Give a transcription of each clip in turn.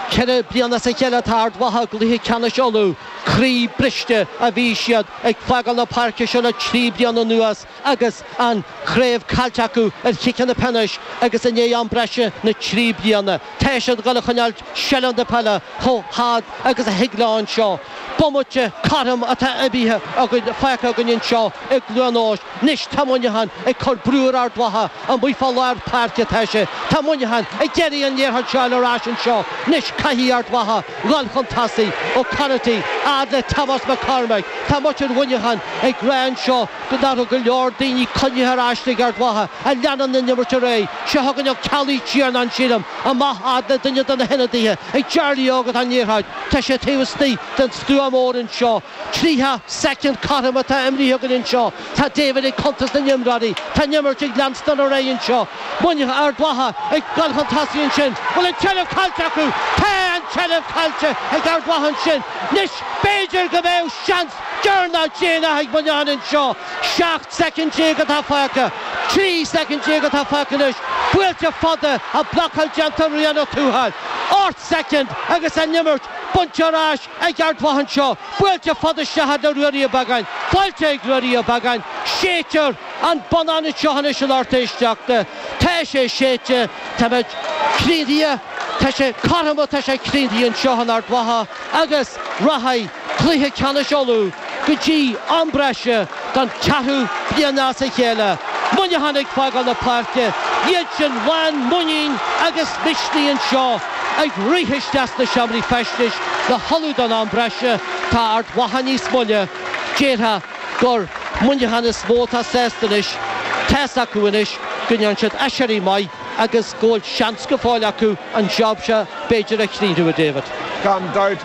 Ceithre bliana as a chéile atá Ard Mhacha i gcluiche ceannais Uladh. Croí briste a bhí siad ag fágáil na páirce seo le trí bliana anuas agus an chraobh caillte acu ar chiceanna peanais agus i ndiaidh am breise na trí bliana tá siad ag dul a choinneáil seilbh na peile chomh fada agus a thig leo anseo. Bomaite cothrom atá imrithe againn fágtha againn anseo i gCluain Eois. 'Nois tá Muineachán ag cur brú ar Ard Mhacha, amuigh fá lár páirce atá sé. Tá Muineachán ag iarraidh an liathróid seo ar ais anseo 'nois. Caithfidh Ard Mhacha a dhul chun tosaigh. Ó Conaty, a fhad le Tomás Mac Cormaic. Tá muintir Mhuineacháin ag rá anseo nach raibh go leor daoine coinnithe ar ais ag Ard Mhacha ach leanann an imirt ar aghaidh, thugann Ó Ceallaigh an Tiarnán, sílim, amach a fhad le duine de na hionadaithe ag Jarly Óg atá an liathróid. Tá sé taobh istigh den stua mór anseo. Tríocha soicind cothrom atá imrithe againn anseo. Tá David ag cuntas na n-imreoirí. Tá an imirt ag leanstan ar aghaidh anseo. Muineadh, Ard Mhacha ag goil chun tosaigh ansin. Bhfuil an tseilbh caillte acu? Tá an tseilbh caillte ag Ard Mhacha ansin. Anois b'fhéidir go mbeadh seans deireanach déanach ag Muineachán anseo. Seacht soicind déag atá fágtha. Trí soicind déag atá fágtha anois. Buailte fada, an blocáil déanta, ar Ryan Ó Tuathail. soicind agus an imirt buaite ar ais ag Ard Mhacha anseo. Buailte fada isteach chuig Ruairí Ó Beagáin. Faighte ag Ruairí Ó Beagáin. Séidtear an bonnán anseo anois a lucht éisteachta. Tá sé séidte. Táimid críochnaithe. Tá sé cothrom. Tá sé críochnaithe anseo ag Ard Mhacha agus rachaidh. Cluiche Ceannais Uladh go dtí am breise don ceathrú bliain as a chéile. Muineachán ag fágáil na páirce, iad sin lán muiníne agus misnigh anseo ag rith isteach sna seomraí feistis le hullmhú don am breise. Tá Ard Mhacha níos moille, déarfá gur Muineachán is mó atá sásta anois. Tá's acu anois go ndéanann siad aiséirí maith. agus go bhfuil seans go fóill acu an job seo b'fhéidir a chríochnú, a David. Gan dabht,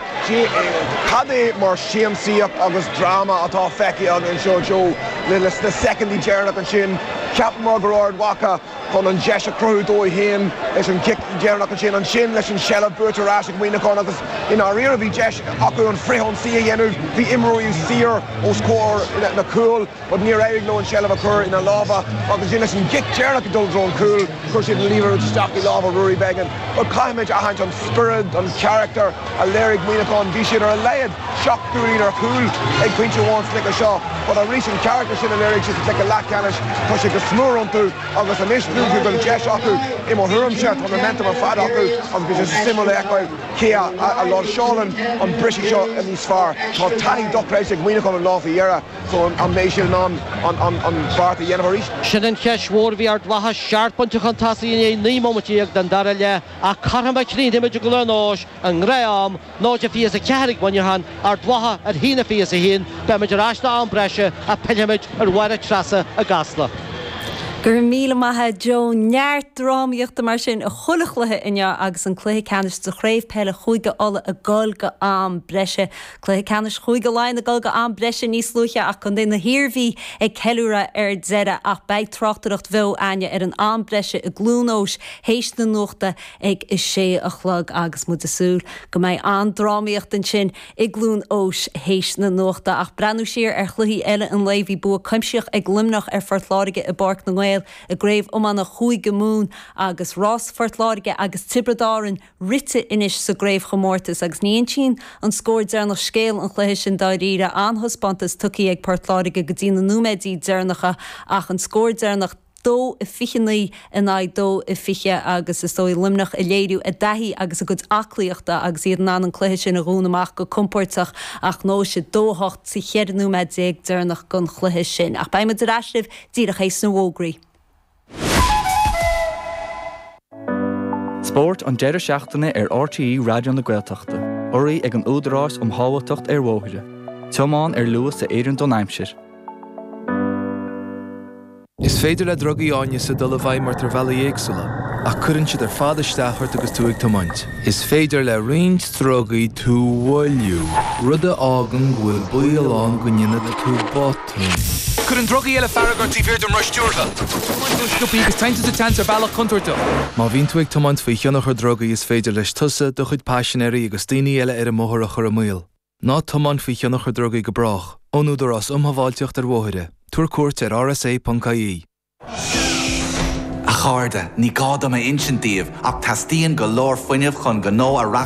cad é mar shiamsaíocht agus dráma atá feicthe againn anseo, Joe, leis na soicindí deireanach ansin, cheapamar go raibh Ard Mhacha chun an deis a chruthú dóibh féin leis an gcic dheireanach ansin, ansin leis an seilbh buaite ar ais ag Muineachán agus i ndáiríre bhí deis acu an frithionsaí a dhéanamh, bhí imreoirí saor os comhair na cúl. but níor éirigh leo an tseilbh a chur ina lámha agus then leis an gcic deireanach ag dul i dtreo an chúil, chuir siad an liathróid isteach i lámha Ruairí Beggan. Bhuel, caithfimid a aithint an spiorad, an carachtar a léirigh Muineachán, bhí siad ar a laghad seacht gcúilín ar chúl ag pointe amháin sa gcluiche seo, but arís an carachtar sin a léirigh siad sa gcluiche leathcheannais, tá sé go smior iontu agus anois tá's acu go bhfuil deis acu, i mo thuairimse, tá an momentum ar fad acu agus beidh sé suimiúil a fheiceáil cé a láimhseálann an briseadh seo níos fearr. Tá taithí dochreidte ag Muineachán an lá faoi dheireadh. So an mbeidh siad in ann an beart a dhéanamh arís? Sin an cheist mhór. Bhí Ard Mhacha seacht bpointe chun tosaigh i ndiaidh naoi mbomaite dhéag den dara leath ach cothrom a chríochnaímid i gCluain Eois i ngnáth-am, náid a fiche's a ceathair ag Muineachán, Ard Mhacha ar a haon a fiche's a haon. Beimid ar ais don am breise ach pillfimid ar Mháire Treasa i gCasla. Go raibh míle maith agat Joe. Neart drámaíochta mar sin i chuile chluiche inniu agus an cluiche ceannais sa chraobh peile Chúige Uladh ag dul go am breise. Cluiche Ceannais Chúige Laighean ag dul go am breise níos luaithe ach Contae na hIarmhí ag ceiliúradh ar deireadh ach beidh tráchtaireacht bheo againn ar an am breise i gCluain Eois théis na nuachta ag a sé a chlog agus muid ag súil go mbeidh an-drámaíocht ansin i gCluain Eois théis na nuachta ach breathnú siar ar chluichí eile an lae bhí bua cuimsitheach ag Luimneach ar Phort Láirge i bPáirc na nGael i gCraobh Iomána Chúige Mumhan agus rás Phort Láirge agus Tiobraid Árann rite anois sa gcraobhchomórtas agus ní insíonn an scór deireanach scéal an chluiche sin dáiríre, an-thaispeántas tugtha ag Port Láirge go dtí na nóiméidí deireanacha ach an scór deireanach, 2-29 in aghaidh 2-20, agus is dóigh Luimneach ag léiriú a dtaithí agus a gcuid aclaíochta agus iad in ann an cluiche sin a dhúnadh amach go compóirteach ach ghnóthaigh siad 2-8 sa cheithre nóiméad déag deireanach den chluiche sin. Ach beidh muid ar ais libh díreach théis na bhfógraí. Spórt an deireadh seachtaine ar RTÉ Raidió na Gaeltachta. Urraithe ag an Údarás um Shábháilteacht ar Bhóithre. Tiomáin ar luas a oireann don aimsir. Is féidir le drugaí áineasa dul i bhfeidhm ort ar bhealaí éagsúla, ach cuireann siad ar fad isteach ort agus tú ag tiomáint. Is féidir le roinnt drugaí tú a mhoilliú, rud a fhágann go bhfuil baol ann go ndéanfaidh tú botún. Cuireann drugaí eile fearg ort taobh thiar den roth stiúrtha. Tiomáineann tú go sciobtha agus téann tú sa tseans ar bhealach contúirteach. Má bhíonn tú ag tiomáint faoi thionchar drugaí is féidir leis tusa, do chuid paisinéirí agus daoine eile ar an mbóthar a chur i mbaol. Ná tiomáin faoi thionchar drugaí go brách, ón Údarás um Shábháilteacht ar Bhóithre, tabhair cuairt ar rsa.ie. A chairde, ní gá dom a insint daoibh ach teastaíonn go leor fuinnimh chun gnó a reachtáil.